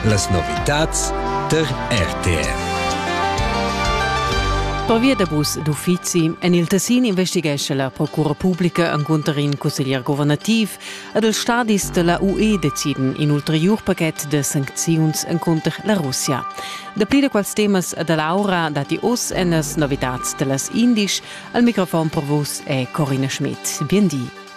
Las novitads tar RTR. Pervia da bus d'uffizi en il Tessin investighescha la Procura publica encunter in cusseglier governativ ed els stadis da la UE deciden in ulteriur pachet da sancziuns encunter la Russia. Dapli da quels temas da Laura datti oz en las novitads da las Indisch. Al microfon per vus è Corina Schmidt. Bien di.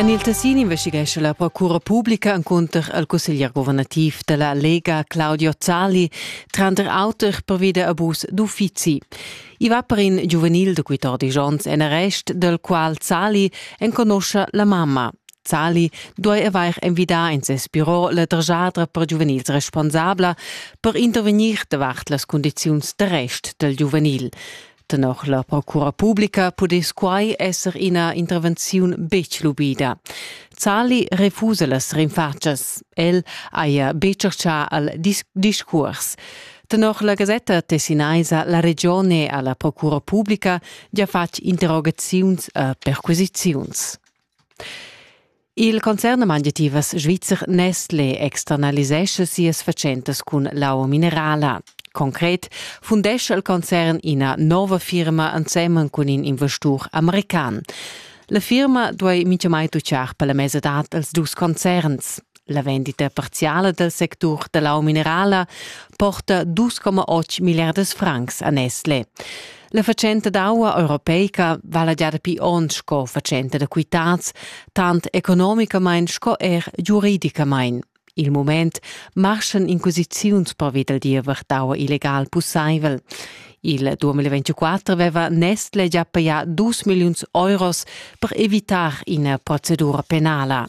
En il Tessin investighescha la procura publica encunter il cusseglier guvernativ della Lega Claudio Zali tranter auter pervi da abus d'uffizi. I va per in giuvenil de 14 onns en arrest, del qual Zali enconoscia la mamma. Zali duai avair envidà en ses biro la drgiadra per giuvenils responsabla per intervegnir davart las cundiziuns d'arrest dal giuvenil. Tenor la procura publica pudess quai esser ina intervenziun betg lubida. Zali refusa las rinfatschas. El haja be tschertgà al dis discurs. Tenor la gasetta tessinaisa La Regione ha la procura publica gia fatg interrogaziuns a perquisiziuns. Il concern mangiativas svizzer Nestlé externalisescha sias fatschentas cun l'aua minerala. Concret fundescha il concern ina nova firma ensemen cun in investur american. La firma duei mintgamai tutgar per la mesa dad els dus concerns. La vendita parziala dal sectur da l'aua minerala porta 2,8 milliardas francs a Nestle. La fatschenta d'aua europeica vala già dapi onn sco fatschenta da quitads, tant economicamain sco er giuridicamain. Il moment marschan inquisiziuns pervi dal diever d'aua illegal pussaivel. Il 2024 aveva Nestle già pajà 2 milliuns euros per evitar ina procedura penala.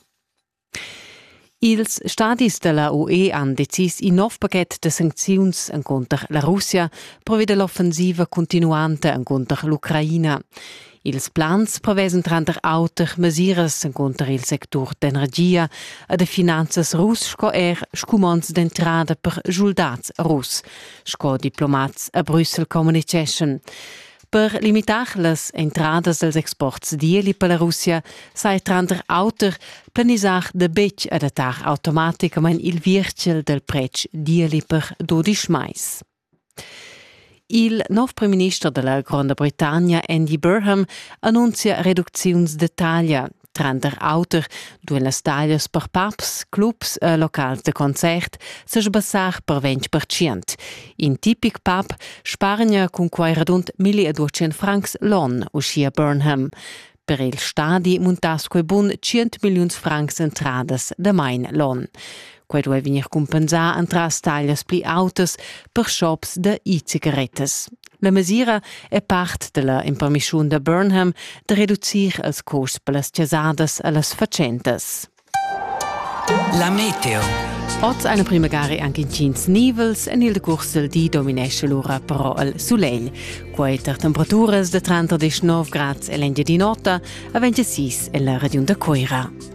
Ils stadis della UE han decis in nov paquet da sancziuns encunter la Russia previa dall'offensiva continuanta encunter l'Ucraina. Ils plans prevesan tranter auter mesiras encunter il sectur d'energia e de finanzas russ sco er scumonds d'entrada per schuldats russ, sco diplomats a Brüssel communiceschan. Per limitar las entradas dels exports d'ieli per la Russia sai tranter auter planisar da betg adattar automaticamain il virchel del pretsch d'ieli per dodisch mais. Il nov premierminister della Gronda Britannia Andy Burham annuncia reducziuns de taglia Tranter auter duein las taglias per pubs, clubs e locals da concert sebassar per 20%. In tipic pub spargna cun quei radund 1200 francs l'on, uschia Burnham. Per il stadi muntass quei bun 100 milliuns francs entradas damain l'on. Quei duei vegnir cumpensà entras taglias pli autas per shops da e-cigarettas. La mesira è part della impermissiun da Burnham da reducir els costs per las chasadas a las fatschentas. La meteo. Oz eine primagari anche incints nivels en il decurs del di dominesce l'ora però il sulegl. Quei tar temperaturas de 30 19 grads en l'Engiadin'Ota a 26 en la regiun da Coira.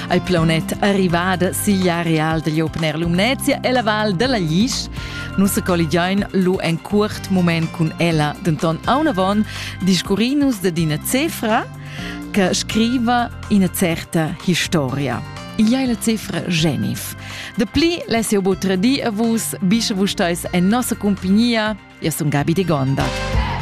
al plaunet arrivada sigl areal degl Open Air Lumnezia e la val dalla Lisch. Nus colligiain lu en cuort moment cun ella, denton aunavon discurrinus dad ina cefra che scriva ina certa historia. Igl è la cifra Genif. De pli less eu butra di a vus, bisce vus steis en nossa compagnia. Io sun Gabi de Gonda.